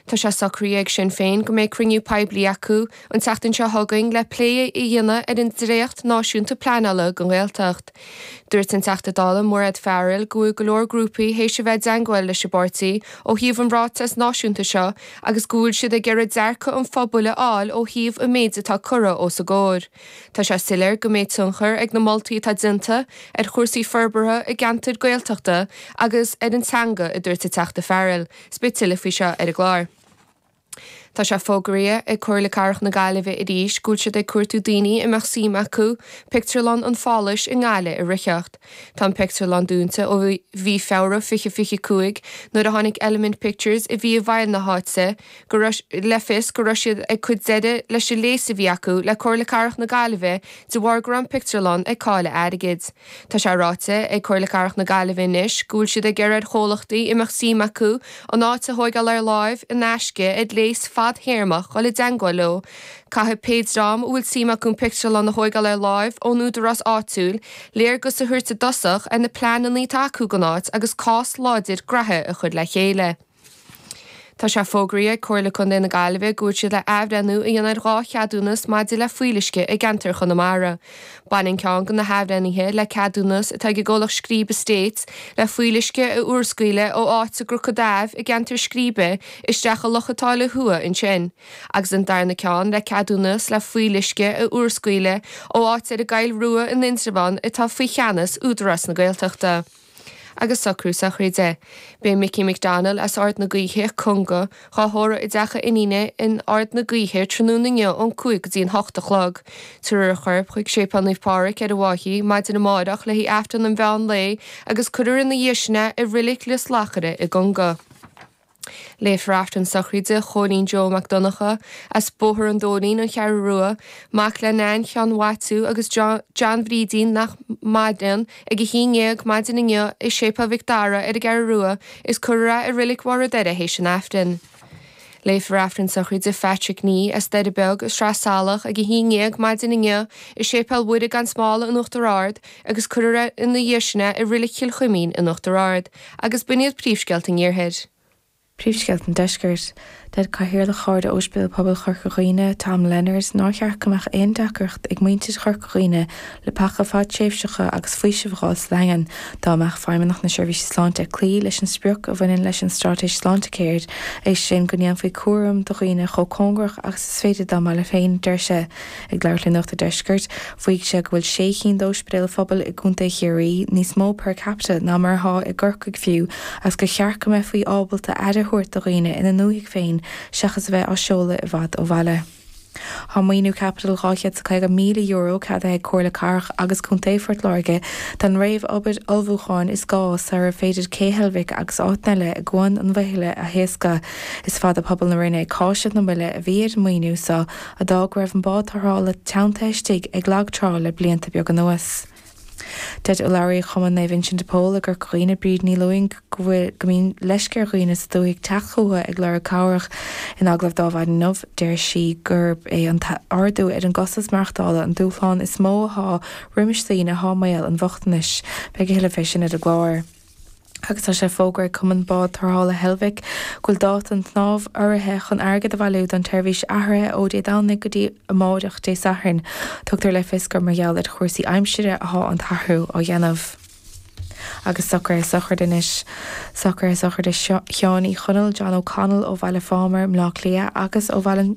Tá sé socraithe ag Sinn Féin go mbeidh cruinniú poiblí acu an tseachtain seo chugainn le plé a dhéanamh ar an dréacht náisiúnta pleanála don Ghaeltacht. Dúirt an Teachta Dála Mairéad Farrell go bhfuil go leor grúpaí théis a bheith i dteangmháil leis an bpáirtí ó thaobh an ráiteas náisiúnta seo agus go bhfuil siad ag iarraidh dearcadh an phobail a fháil ó thaobh an méid atá curtha os a gcomhair. Tá sé soiléir go mbeidh tionchar ag na moltaí atá déanta ar chúrsaí forbartha i gceantair Gaeltachta agus ar an teanga a dúirt an Teachta Farrell. Is beidh tuilleadh faoi seo ar an gclár. Tá sé fógraithe ag Comhairle Cathrach na Gaillimhe arís go bhfuil siad ag cuartú daoine a mbeadh suim acu Pictiúrlann an Pháláis i nGaillimh a reáchtáil. Tá an pictiúrlann dúnta ó mhí Feabhra 2025 nuair a thug Element Pictures a bhí i bhfeighil na háite, le fios go raibh siad ag cur deireadh leis an léas a bhí acu le Comhairle Cathrach na Gaillimhe de bharr go raibh an pictiúrlann ag cailleadh airgid. Tá sé ráite ag Comhairle Cathrach na Gaillimhe anois go bhfuil siad ag iarraidh ar chomhlachtaí a mbeadh suim acu an áit a thóigeáil ar láimh in aisce ar léas fadtéarmach dul i dteangmháil leo Caithfidh pé dream a bhfuil suim acu an pictiúrlann a thóigeáil ar láimh ón údarás áitiúil léargas a thabhairt i dtosach ar na pleananna atá acu don áit agus cás láidir gnaithe a chuir le chéile. Tá sé fógraithe ag Comhairle Contae na Gaillimhe go bhfuil siad le athbhreithniú a dhéanamh ar dhá cheadúnas maidir le fuíolluisce i gceantar Chonamara. Baineann ceann de na hathbhreithnithe le ceadúnas atá ag an gcomhlacht Scríbe Estates le fuíolluisce a urscaoileadh ó áit i gCnoc an Daimh i gceantar Scríbe isteach i Loch an tSáile Thuaidh ansin agus an darna ceann le ceadúnas le fuíolluisce a urscaoileadh ó áit ar an gCoill Rua in Indreabhán atá faoi cheannas Údarás na Gaeltachta. agus socruithe sochraide. Beidh Micí McDonnell as Ard na Gaoithe, Conga, dhá thórramh i dteach a iníne in Ard na Gaoithe tráthnóna inniu ón cúig go dtí an hocht a chlog. Tabharfar a chorp chuig Séipéal Naomh Pádhraic ar an bhFaiche maidin amáireach le haghaidh Aifreann an mheán lae agus cuirfear ina dhiaidh sin é i Rilic Lios Luachra i gConga. Léifear Aifreann sochraide Chóilín Joe Mac Donnacha as Bóthar an Dóilín, An Cheathrú Rua, mac le Nain Sheáin Mhaitiú agus John Bhrídín nach maireann, ag a haon déag maidin inniu i Séipéal Mhic Dara ar an gCeathrú Rua is cuirfear é i Roilic Bharr a' Doire théis an Aifrinn. Léifear Aifreann sochraide Phatrick Nee as Doire Beag i Sraith Salach ag a haon déag maidin inniu i Séipéal Mhuire Gan Smál in Uachtar Ard, agus cuirfear ina dhiaidh sin é i Roilic Chill Chuimín in Uachtar Ard, agus b'in iad príomhscéalta an Iarthair. Príomhscéalta an Deiscirt. Deir Cathaoirleach Chomhairle Ospidéal Pobail Chorca Dhuibhne, Tom Leonard, nár cheart go mbeadh aon deacracht ag muintir Chorca Dhuibhne leapacha fadtréimhseacha agus faoisimh a fháil sa Daingean dá mbeadh Feidhmeannacht na Seirbhíse Sláinte ag cloí leis an sprioc a bhaineann leis an straitéis Sláintecare, é sin go ndéanfaí cúram do dhaoine chomh cóngarach agus is féidir dá mbaile féin, deir sé. Ag labhairt le Nuacht an Deiscirt, mhaígh sé go bhfuil sé cinn d'óispidéil phobail i gContae Chiarraí níos mó per capita ná mar atá i gCorcaigh fiú agus gur cheart go mbeifí ábalta aire a thabhairt do dhaoine ina ndúthaigh féin seachas a bheith á seoladh i bhfad ó bhaile. Tá maoiniú caipitil €250,000 ceadaithe ag Comhairle Cathrach agus Contae Phort Láirge don réamhobair ullmhúcháin is gá sarar féidir Cé Heilbhic agus áiteanna eile i gCuan an Mheithile a thaoscadh. Is fada pobal na Rinne ag cáiseamh na moille a bhí ar an maoiniú so, a d'fhág go raibh an bád tarrthála teannta istigh ag lag trá le blianta beag anuas. Deir urlabhraí Chumann Naomh Uinseann de Pól i gCorca Dhuibhne Bríd Ní Lúing go bhfuil go mbíonn leisce ar dhaoine sa dúthaigh teacht chucu ag lorg cabhrach. In agallamh d'Adhmhaidin inniu deir sí gurb é an t-ardú ar an gcostas maireachtála an dúshlán is mó athá roimis daoine athá i mbaol an bhochtanais. Beidh a thuilleadh fé sin ar an gclár. agus tá sé fógartha ag Cumann Bád Tarrthála Heilbhic go bhfuil dáta an tsnámh urraithe chun airgead a bhailiú don tseirbhís athraithe ó Dé Domhnaigh go dtí amáireach Dé Sathairn. Tugtar le fios gur mar gheall ar chúrsaí aimsire athá an t-athrú á dhéanamh. Agus socruithe sochraide anois. Socruithe sochraide Sheáin Uí Chonaill, John O'Connell ó Bhaile Phámar i mBleá Cliath agus ó Bhaile an.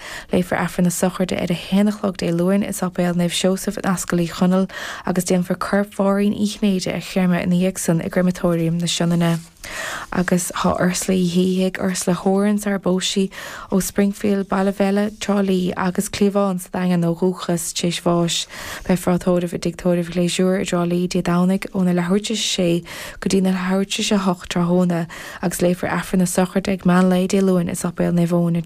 Léifear Aifreann na sochraide ar a haon a chlog Dé Luain i Sáipéal Naomh Seosamh in Ascaill Uí Chonaill agus déanfar corp Mháirín Uí Chinnéide a chréamadh ina dhiaidh san i gCréamatóiriam na Sionainne. Agus tá Ursula Uí Shíthigh, Ursula Horan sarar phós sí, ó Springfield, Ballyvelly, Trá Lí agus cliabhán sa Daingean ó dhúchas, tar éis bháis. Beifear á tórramh i dtigh tórraimh Gleasure i dTrá Lí Dé Domhnaigh óna leathuair tar éis a sé go dtína leathuair tar éis a hocht tráthnóna agus léifear Aifreann na sochraide ag meán lae Dé Luain i Sáipéal Naomh Eoin i